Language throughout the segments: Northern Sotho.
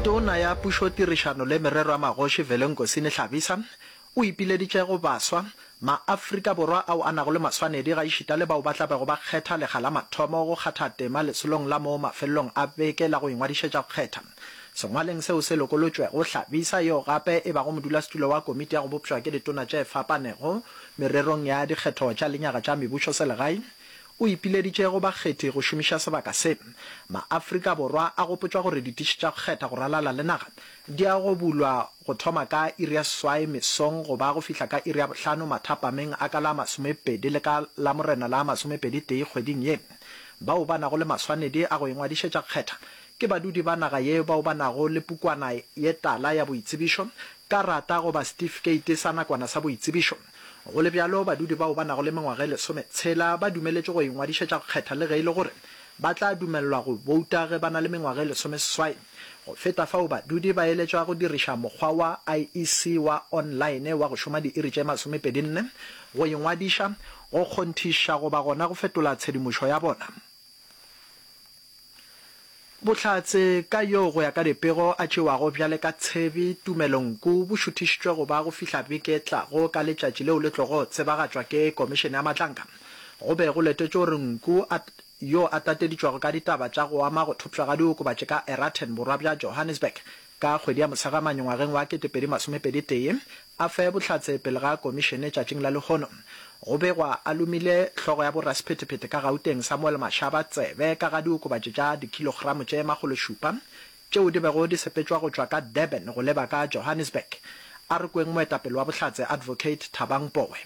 Tona ya Pušotirišano le Merero ya Magoši Velenkosini Hlabisa o ipileditše go baswa ma Afrika Borwa ao a nago le maswanedi gaešita le bao ba tla bego ba kgetha lekga la mathomo go kgatha tema lesolong la mo mafelelong a beke la go ingwadišetša go kgetha. Sengwaleng seo se lokolotšwego, Hlabisa, yeo gape e bago modulasetulo wa Komiti ya go Bopšwa ke Ditona tše Fapanego mererong ya Dikgetho tša Lenyaga tša Mebušoselegae, o ipileditše go bakgethi go šomiša sebaka se. Ma-Afrika Borwa a gopotšwa gore ditiši tša go kgetha go ralala le naga di a go bulwa go thoma ka iri ya seswai mesong go ba go fihla ka iri ya bohlano mathapameng a ka la masomepedi le ka Lamorena la masomepedi-tee kgweding ye. Bao ba nago le maswanedi a go ingwadišetša kgetha ke badudi ba naga ye bao ba nago le pukwana ye tala ya boitsebišo, karata goba setifikeiti sa nakwana sa boitsebišo. Go le bjalo, badudi bao ba nago le mengwaga e lesome tshela ba dumeletšwe go ingwadišetša go kgetha le ge e le gore ba tla dumelelwa go bouta ge ba na le mengwaga e lesome seswai. Go feta fao, badudi ba eletšwa go diriša mokgwa wa IEC wa online wa go šoma diiri tše masomepedi nne go ingwadiša, go kgonthiša goba gona go fetola tshedimošo ya bona. Bohlatse, ka yo go ya ka dipego a tšewago bjale ka tshebi, tumelo nku, bo šuthišitšwe go ba go fihla beke e tlago ka letšatši leo le tlogo tsebagatšwa ke Komišene ya Matlanka. Go be go letetšwe gore nku a, yo a tateditšwego ka ditaba tša go ama go thopšwa ga diokobatši ka Eraten, borwa bja Johannesburg, ka kgwedi ya Moshegama nyngwageng wa 2021, a fe bohlatse pele ga komišene tšatšing la lehono. Go begwa a lomile hlogo ya borasphetephete ka Gauteng Samuel Mashaba tsebe ka ga diokobatši tša dikilogramo tše makgološupa tšeo di bego di sepetšwa go tšwa ka Durban go leba ka Johannesburg. A re kweng moetapele wa bohlatse Advocate Thabang Mpoe.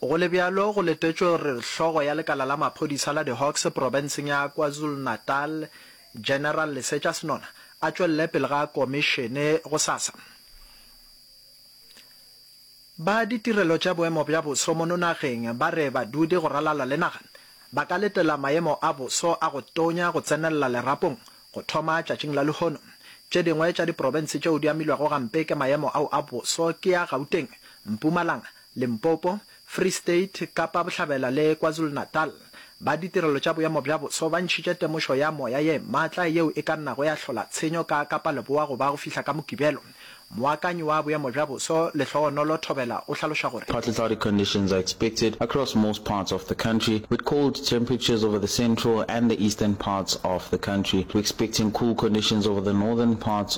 Go le bjalo, go letetšwe gore hlogo ya lekala la maphodisa la diHawks profenseng ya KwaZulu-Natal, General Lesetša Senona, a tšwelele pele ga komišene gosasa. Ba ditirelo tša boemo bja boso mono nageng ba re badudi go ralala le naga ba ka letela maemo a boso a go tonya go tsenelela lerapong go thoma tšatšing la lehono. Tše dingwe tša diprofense tšeo di amilwego gampe ke maemo ao a boso ke ya Gauteng, Mpumalanga, Limpopo, Free State, Kapa Bohlabela le KwaZulu-Natal, ba ditirelo tša boemo bja boso ba ntšhitše temošo ya moya ye matla yeo e ka nnago ya hlola tshenyo ka Kapa Leboa go ba go fihla ka Mokibelo. Moakanyi wa boemo bja boso, Lehlohonolo Thobela o hlaloša gore. Partly cloudy conditions are expected across most parts of the country, with cold temperatures over the central and the eastern parts of the country. We're expecting cool conditions over the northern parts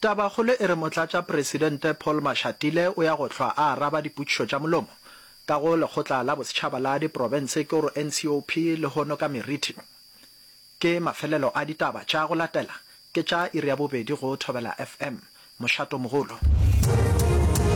Tabakgolo e re Motlatšapresidente Paul Mashatile o ya go hlwa a araba dipotšišo tša molomo ka go Lekgotla la Bosetšhaba la Diprofense ke gore NCOP lehono ka meriti. Ke mafelelo a ditaba tša go latela, ke tša iri ya bobedi go Thobela FM. Mošato mogolo.